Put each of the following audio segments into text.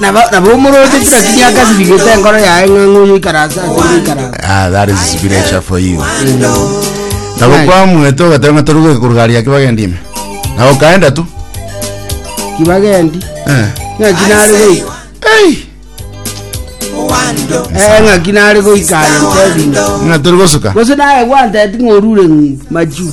Nabo- nabo omoroche kira kiria akasibigete enkoro yaye ng'a ng'oyo ikaranse ase ng'a ikaranse Ah, that is spiritual for you. Nabo Right. kwa mweto ogatema toruge kurugari yake bagendi ime. Na ukaenda tu. kibagendi Eh. ng'aki nare goika Hey. Eh, ng'aki nare goika aye ntebi Na turi gosuka. gose naye gwanteti ng'orure ng'u machu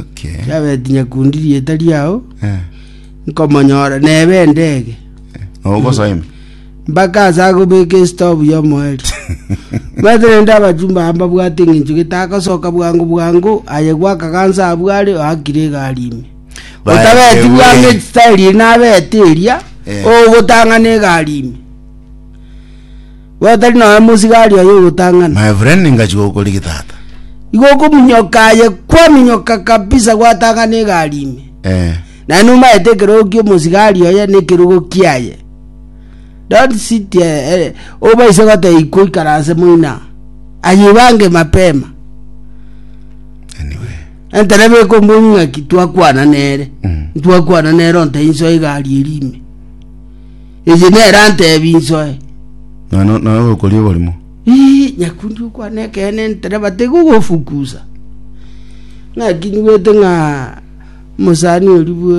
Okay. kiabeti nyakundi rieta riao Eh. nkomonyora nebe endege Nogosoima. mpaka ase agobeka esitobu yomoeri bwate nende abachumba amba bwate eng'encho getagosoka bwango bwango aye gwakagansa abwo are oakire egari ime Bae- otabeti ewe. bwango esitairi nabete eria Eh. ogotang'ana egari ime Gotari nonya mosigari oye ogotang'ana. My friend ingachia gokorigi tata. Igo okominyoka aye kwaminyoka kabisa gwatang'ana egari ime. Eh. Naye nomaete ekerogo kia omosigari oye na ekerogo kiaye. Don't sit eh, eh, obaise goteba ikwa ikaranse moina. Ayibange mapema. Anyway. Enterebe ekomboni ng'aki twakwana nere. Mm. Twakwana nere onte inso egari eri ime. Eye nere antebi insoe. Nonya no- nonya ogokoria oborimo. Ii, nyakundi okwane ekeene entereba tegogofukusa. Ng'akinywete ng'a omosani oria bwe